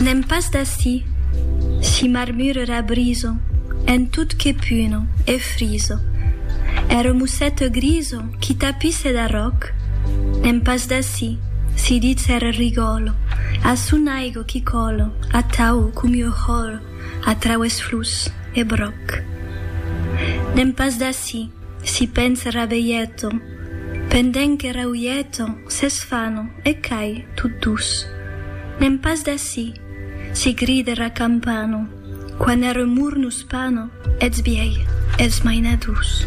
N'èm pas d'ací, si marmurera briso en tot que puno e friso, ère mossèto griso qui tapisse d'arròc, n'èm pas d'ací, si ditz ère rigòlo, a son aigo qui còlo atau comiu hòro a traues flus e bròc. N'èm pas d'ací, si pens rabeieto, Pendent que rauieton, s'esfanon, e cai, tot dus. N'èm pas d'ací! si gride ra campano, quan er remor nos pano, eths biei, eths mainadors.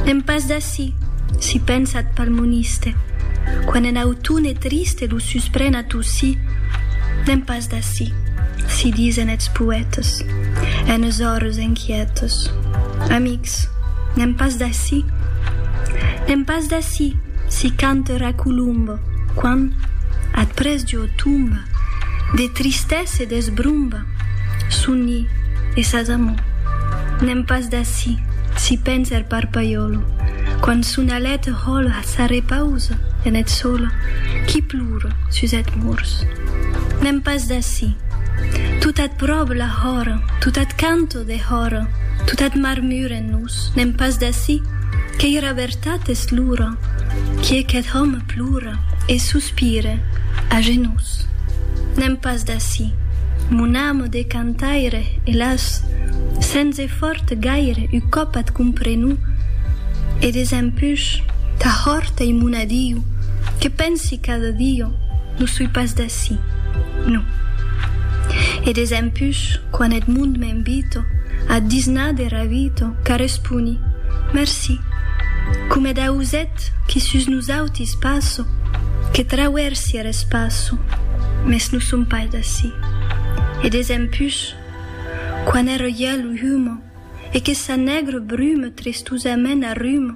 N'èm pas d'ací! si pensa eth palmoniste, quan en autone triste lo suspren a tossí. N'èm pas d'ací! si disen eths poètes, enes ores enquietes. Amics! Ets. N'èm pas d'ací. N'èm pas d'ací, si cante ra colomba, quan, ath près jo, tomba, de tristesa e d'esbromba, soni e sas amor. N'èm pas d'ací, si pensa er parpaiòlo, quan son alet hòla s'arrepausa en eth sòlo, qui plora sus eth mors. N'èm pas d'ací. Tot ath pròp la hòra, tot ath cante, o dehòra, totat marmuren nos, n'èm pas d'ací, qu'ei era vertat es l'ora, qui aquest òme plora e sospire a genós. N'èm pas d'ací, mon ame de cantaire, elàs, sens efòrt gaire u còp at comprenu, e desempuch, tà hòrt ei mon adiu, que pensi cada dia, Non soi pas d'ací, non. E desempús, quan Edmond m'invito ath disnar de Ravito, qu'arresponi, Merci, coma eth auset qui sus nosautis passo, que trauersi er espaço, mès non som pas d'ací. E desempús, quan er hièl humo e que sa nègra bruma tristosament arruma,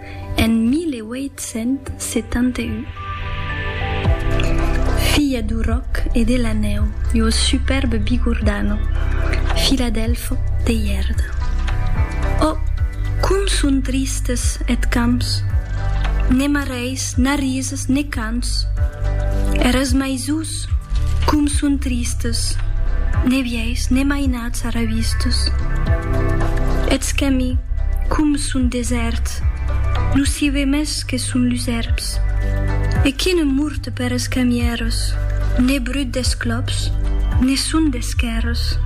en 1871. Filha du ròc e de la nèu e o superbe Bigordano, Filadèlfo de Ièrda. Ò, com son tristes eth camps! Ne marèis, n'arrises, ne cants! Eras maisons Sus. Com son tristes, ne vièis ne mainats arravistes. Eths quemi, com son desèrts, non s'i ve mès que son lus èrbs. E qui ne murte per es quemièros, ne brut des clops, ne son d'esquèrres.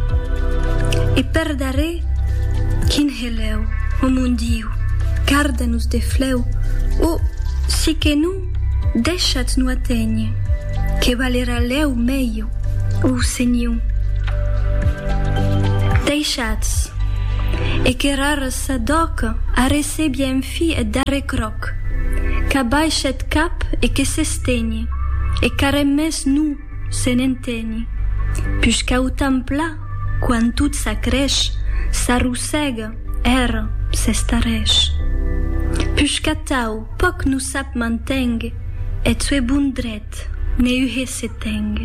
E per darrèr, quin helèu, o mon Diu, garda-nos de flèu, o, si que non, Deishat no aténher, que valerà lèu meiu, o senhiu. Deishatz, e que rarra sa dòca arrecebia en fi eth darrèr cròc, qu'abaishe eth cap e que s'estenhe, e qu'arren mès no se n'entenhe, pus qu'au tan pla, quan tot s'acrèsh, s'arrossèga, ère, s'estarrèsh. Pus qu'atau, Pòc no sap mantèng, eth sue bon dret, ne uhe se tèng.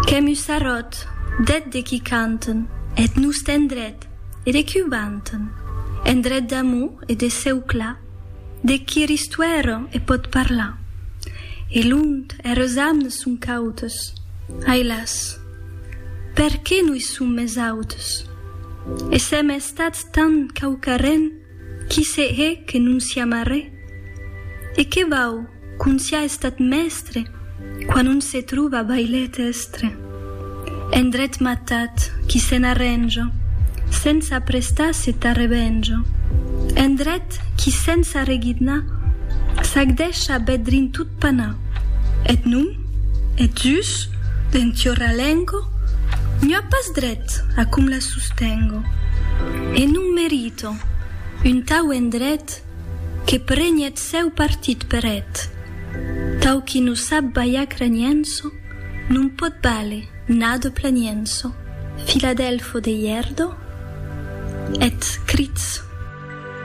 Qu'èm us arròt, d'eth de qui canten, eth noste endret, e de qui o vanten. Endret d'amor e de cèu clar, deth qui er istuèra e pòt parlar. E lont, eres amnes son cautes, ai las! Perqué no i som mès autes? E s'èm estats tant quauquarren, Qui se hè que non siam arrè? E que vau qu'on siá estat mèstre quan on se trova bailet èstre? En dret matat qui se n'arrènja sensa prestar se tà revenja, en dret qui sensa regidnar s'ac deisha bèth drin tot panar. Eth nom, eth jus, d'en tiorra lengo, n'ua pas dret a com la sostengo, e non merite Un tau endret que preni eth sèu partit per eth tau qui non sap balhar cranienso non pòt bale nado planienso filadelfo de hierdo eth crits.